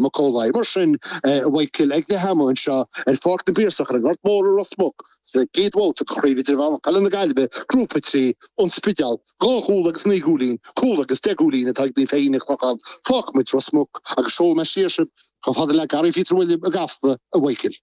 Mac Amhlaigh. Mar sin, ag leath ama anseo ar Pháirc na bPiarsach ar an nGort Mór i Ros Muc sa gcéad bhabhta de Chraobh Idirmheánach Peile na Gaillimhe, Grúpa a Trí, An Spidéal, dhá chúl agus naoi gcúilín, cúl agus deich gcúilín atá ag Naomh Feichín an Chlocháin, Fágfaidh muid Ros Muc agus seolfaidh mé siar sibh chomh fada le Gearóid Pheter William i gCasla, a mhic.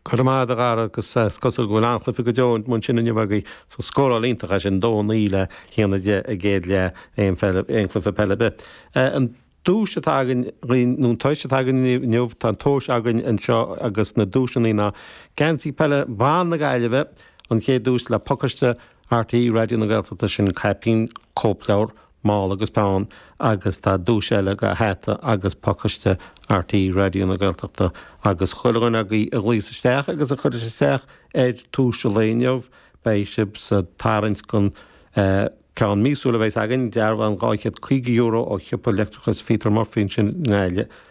Go raibh maith agat, a Dhara agus is cosúil go bhfuil an-chluife go deo ansin inniu agaibh. Scóráil iontach ansin, 2 9 le hAon 10 i gcéad leath aon pheil, aon cluife peile ar bith. An duais atá againn againn, nó an tois atá againn inniu inniu, tá an tomhas againn anseo agus na duaiseanna ná, Geansaí Peile Bhan na Gaillimhe, an chéad duais le Pacáiste RTÉ Raidió na Gaeltachta, sin caipín cóipleabhar Mála agus peann agus tá duais eile againn, hata agus pacáiste RTÉ Raidió na Gaeltachta agus chuile dhuine agaibh a ghlaos isteach agus a chuireas isteach ar thomhas an lae inniu beidh sibh sa tarraingt don ceann míosúil a bheas againn, dearbhán €250 ó Shiopa Leictreachais Pheter Murphy ansin i nGaillimh.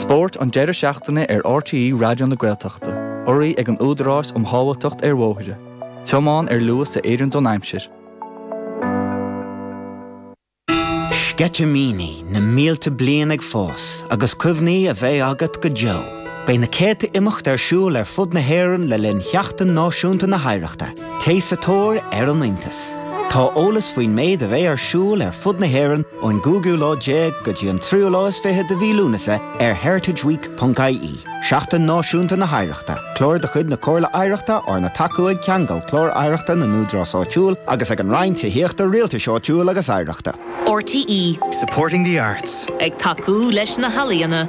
Spórt an deireadh seachtaine ar RTÉ Raidió na Gaeltachta, urraí ag an Údarás um Shábháilteacht ar Bhóithre, Tiomáin ar Luas a Oireann don Aimsir. Sceitimíní na mílte bliain ag fás agus cuimhní a bheidh agat go deo. Beidh na céadta imeacht ar siúl ar fud na hÉireann le linn Sheachtain Náisiúnta na hOidhreachta. Téigh sa tóir ar an iontas. Tá eolas faoin méid a bheidh ar siúl ar fud na hÉireann ón gcúigiú lá déag go dtí an tríú lá is fiche de mhí Lúnasa ar heritageweek.ie. Seachtain Náisiúnta na hOidhreachta, Clár de chuid na Comhairle Oidhreachta arna tacú ag Ceangal Clár Oidhreachta na nÚdarás Áitiúil agus ag an Roinn Tithíochta Rialtais Áitiúil agus Oidhreachta. RTÉ. Supporting the arts. Ag tacú leis na healaíona.